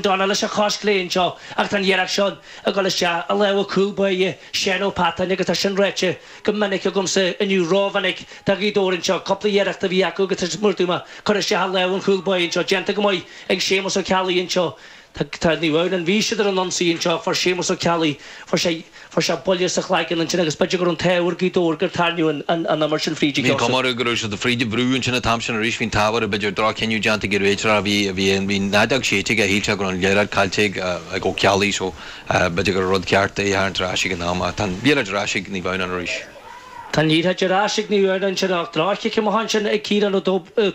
dona leis an chos chlé anseo, ach tá an iarracht seo ag dul isteach i lámha cúl báire Shaun Patton agus tá sin ráite go minic agamsa, inniu rómhinic, ag Gaoth Dobhair anseo. Cúpla iarracht a bhí acu agus tá siad mar adúirt mé curtha isteach i lámha an chúl báire anseo, déanta go maith ag Séamus Ó Ceallaigh anseo. Tá, tá, ní raibh an bhí siad ar an ionsaí anseo, fuair Séamus Ó Ceallaigh, fuair sé, Fuair sé buille sa chlaigeann annsin agus b'fheidir gur an t-ádh ar Gaoth Dobhair gur tairrniugh an an imirt sin fríd a Bhí'n gceann. comhaireamh go raibh siad fríd a bhrú annsin an t-am sin arís bhí'n t-ádh air b'fheidir droch-chinneadh déanta ag an réiteoir a bhí a bhí a bhí an fheadóg séidte aige shíl sé go raibh an liathróid caillte ag ag Ó Ceallaigh so b'fheidir gur rud ceart é a tharraingt ar ais ag an am ach tá'n liathróid ar ais ag Naomh Adhamhnáin arís. Tá'n liathróid ar ais ag Naomh Adhamhnáin sin ach droch-chic amuigh annsin ag Ciarán Ó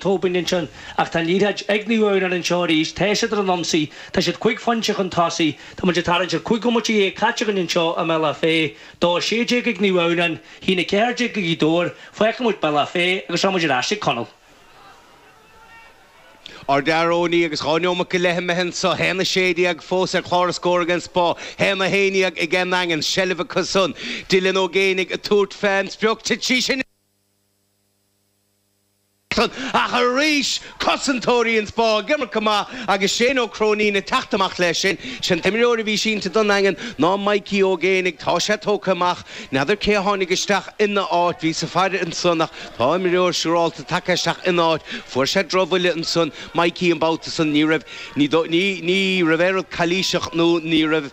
Tóibin annsin ach tá'n liathróid ag Naomh Adhamhnáin annseo arís tá siad ar an ionsaí tá siad cuig phoinnte chun tosaigh Tá muid ag tarraingt ar chúig bhomaite dhéag caite againn anseo i mBealach Féich, dó a sé déag ag Naomh Adhamhnáin, haon a ceathair déag ag Gaoth Dobhair, fágfaidh muid Bealach Féich agus tá muid ar ais ag Conall. Ar Tír Eoghain agus dhá neomat go leith imithe anso, haon a sé déag fós ar chlár na scór ag an Spá, haon a haon déag ag an nDaingean, seilbh acu-san. Dylan Ó Géinigh ag tabhairt fén sprioc, titfidh sí sin! Ach arís, cosantóirí an Spá ag imirt go maith agus Shane Ó Cróinín ag teacht amach leis sin. Is é an t-imreoir a bhí sínte don Daingean ná Mikey Ó Géibheannaigh. Tá sé tógtha amach. N'fheadar cé a tháinig isteach ina áit. Bhí sos fada ansan ach tá imreoir siúrálta tagtha isteach ina áit. Fuair sé drochbhuille ansan, Mikey, an babhta san. Ní raibh, ní, ní, ní raibh aon rud calaoiseach nó ní raibh.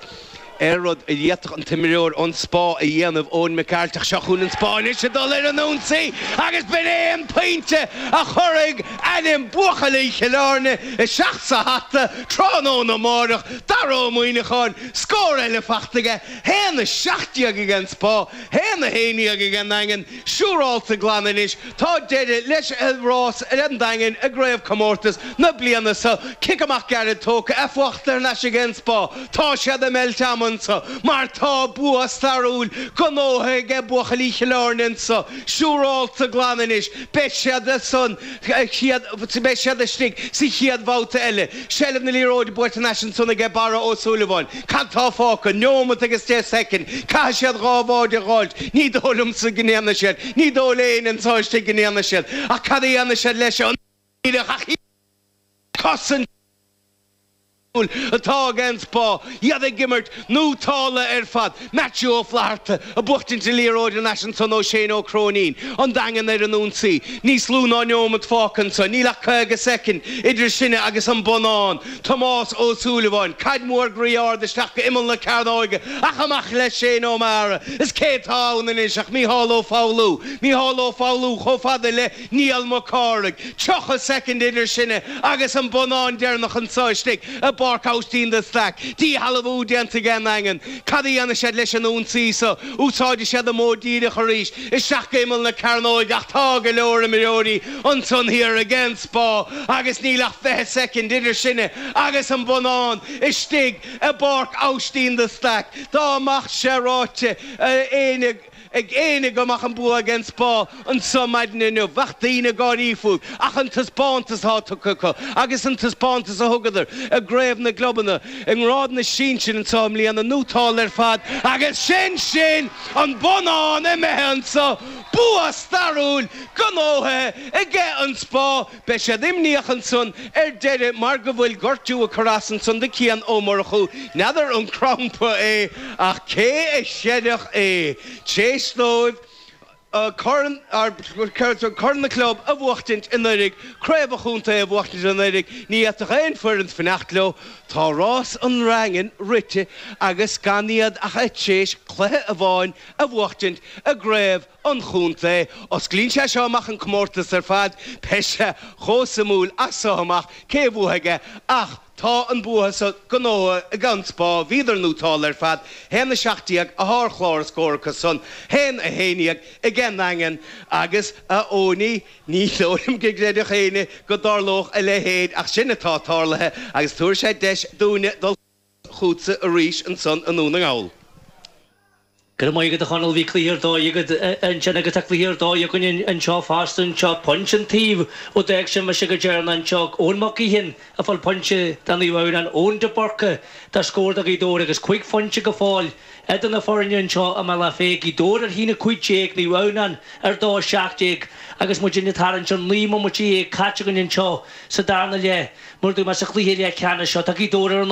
aon rud a d'fhéadfadh an t-imreoir ón Spá a dhéanamh, Eoghan Mac Cárthaigh, seo chun an Spá anois a dhul ar an ionsaí agus b'in é an pointe a chuirfidh ainm bhuachaillí Chill Airne isteach sa hata tráthnóna amáireach, Dara Ó Muíneacháin, scór eile faighte aige, 1 17 ag an Spá, 1 11 ag an nDaingean. Siúráilte glan anois tá deireadh leis an rás an Daingin i gcraobhchomórtas na bliana seo. Cic amach gairid tógtha é fachta thar n-ais ag an Spá. Tá siad ag meilt ama anseo mar tá bua stairiúil gnóthaithe age buachaillí Chill Airne anseo. Siúráilte glan anois beidh siadsan beidh siad istigh sa chéad bhabhta eile. Seilbh na liathróide buaite anois ansan aige Barra Ó Súilleabháin. Cad tá fágtha? Neomat agus deich soicind. Caithfidh siad dhá bháide a dh'fháil. Ní dóigh liomsa go ndéanfaidh siad. Ní dóigh le héinne anso istigh go ndéanfaidh siad. Ach cad a dhéanfaidh siad leis an. Ní bheadh ach cosaint. Liathróid atá ag an Spá iad ag imirt go tóstalach ar fad Matthew Ó Flatharta ag buachtaint na liathróide thar n-ais ansan ó Shane Ó Cróinín an Daingean ar an ionsaí. Níos lú ná neomad fágtha ansan, níl ach 50 soicind idir sinne agus an bonnán. Tomás Ó Súilleabháin, caid mhór groí ard isteach go imeall na cearnóige ach amach leis Shane Ó Meara is cé tá ann anois ach Mícheál Ó Foghlú. Mícheál Ó Foghlú chomh fada le. Niall Mac Cárthaigh, 30 soicind idir sinne agus an bonnán deireanach anso istigh i bPáirc Aibhistín de Staic. Díshealbhú déanta ag an nDaingean. Cad a dhéanfaidh siad leis an ionsaí so? Úsáidfidh siad an modh díreach arís, isteach go imeall na cearnóige ach tá go leor imreoirí ansan thiar ag an Spá agus níl ach 20 soicind idir sinne agus an bonnán istigh i bPáirc Aibhistín de Staic. Dá mbeadh sé ráite ag éinne go. ag éinne go mbeadh an bua ag an Spá anso maidin inniu. Bheadh daoine ag gáirí fúibh ach an taispeántas atá tugtha acu agus an taispeántas a thugadar i gCraobh na gClubanna i ngrád na sinsir anso i mbliana nótálta ar fad agus sin sin! An bonnán imithe anso! Bua stairiúil gnóthaithe aige an Spá! Beidh siad imníoch ansan ar deireadh mar go bhfuil gortú ag cur as ansan do Cian Ó Murchú, n'fheadar an crampa é ach cé a chreidfeadh é tréis dóibh corn Corn na gClub a bhuachtaint anuiridh, Craobh an Chontae a bhuachtaint anuiridh, ní fhéadfadh aon foireann fanacht leo, tá rás an Daingin rite agus gan iad ach tréis cluiche amháin a bhuachtaint i gCraobh an chontae. Osclaíonn sé seo amach an comórtas ar fad, beidh sé chomh suimiúil as seo amach cé a bhuafaidh é, ach tá an bua so gnóthaithe ag An Spá, bhíodar nótálta ar fad, 1, 17, atá ar chlár na scór acu san, 1, 11, ag an nDaingean, agus a Eoiní, ní dóigh liom go gcreidfeadh éinne go dtarlódh a leithéid, ach sin atá tarlaithe, agus tabharfaidh sé deis dúinne dul. chugatsa arís ansan i nDún na nGall. Go raibh maith agat a Chonaill, bhí cluiche ar dóigh agat ansin agus tá cluiche ar dóigh againne anseo fosta, anseo pointe an taobh ó d'fhág sibh mise go deireanach anseo ag Eoin Mac Gaoithín ag fáil pointe do Naomh Adhamhnán, Eoin de Búrca do scór do Ghaoth Dobhair agus cúig phointe go fóill idir na foirne anseo i mBealach Féich, Gaoth Dobhair ar a haon 15, Naomh Adhamhnán ar a dó 17 agus muid ag tarraingt ar naoi mbomaite dhéag caite againn anseo sa darna leath, mar a dúirt mé sa chluiche leathcheannais seo, tá Gaoth Dobhair ar an.